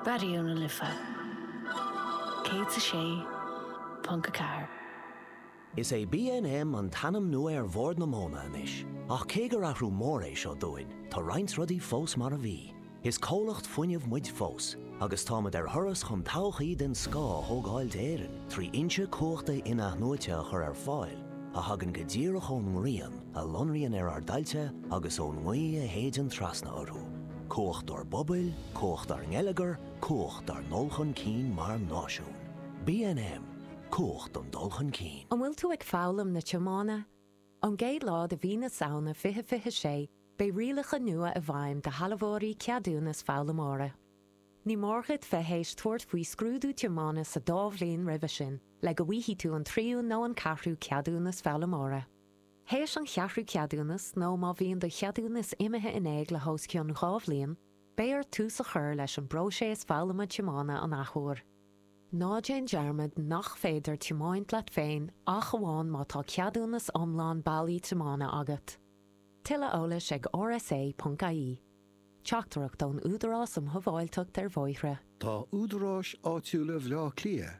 Raidió na Life 106.4. Is é BNM an t-ainm nua ar Bhord na Móna anois, ach cé gur athrú mór é seo dúinn, tá roinnt rudaí fós mar a bhí. Is comhlacht fuinnimh muid fós, agus táimid ar thuras chun todhchaí den scoth a thógáil d'Éirinn trí fhoinse cumhachta in-athnuaite a chur ar fáil, a thagann go díreach ón ngrian. a lonraíonn ar ár dtailte agus ón ngaoth a shéideann trasna orthu, cumhacht dár bpobail, cumhacht dár ngeilleagar, cumhacht dár ndul chun cinn mar náisiún. BNM, Cumhacht don dul chun cinn. An bhfuil tú ag foghlaim na tiomána? Ón gcéad lá de mhí na Samhna 2026, beidh rialacha nua i bhfeidhm do shealbhóirí ceadúnas foghlaimeora. Ní mór dhuit bheith théis tabhairt faoi scrúdú tiomána sa dá bhliain roimhe sin le go bhfaighidh tú an tríú nó an ceathrú ceadúnas foghlaimeora. Théis an cheathrú ceadúnas nó má bhíonn do cheadúnas imithe in éag le hos cionn dhá bhliain, beidh ort tús a chur leis an bpróiseas foghlama tiomána an athuair. Ná déan dearmad nach féidir tiomáint leat féin ach amháin má tá ceadúnas iomlán bailí tiomána agat. Tuilleadh eolais ag rsa.ie. Teachtaireacht ón Údarás um Shábháilteacht ar Bhóithre. Tá údaráis áitiúla Bhaile Átha Cliath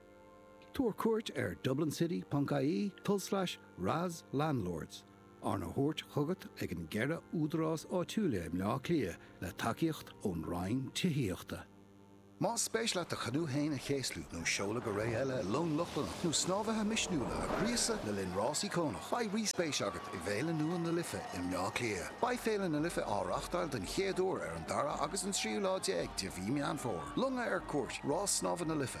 Tabhair cuairt ar dublincity.ie tulslais RAS landlords, arna thabhairt chugat ag an gceithre údarás áitiúla i mBleá Cliath le tacaíocht ón Roinn Tithíochta. Más spéis leat do chanú féin a chéaslú nó seoladh go ré eile le long Lochlannach nó snámhaithe misniúla a ghríosadh le linn rás íocónach, beidh rí-spéis agat i bhFéile nua na Life i mBleá Cliath. Beidh Féile na Life á reáchtáil den chéad uair ar an dara agus an tríú lá déag de mhí Meán Fómhair. Longa ar cuairt, Rás Snámha na Life.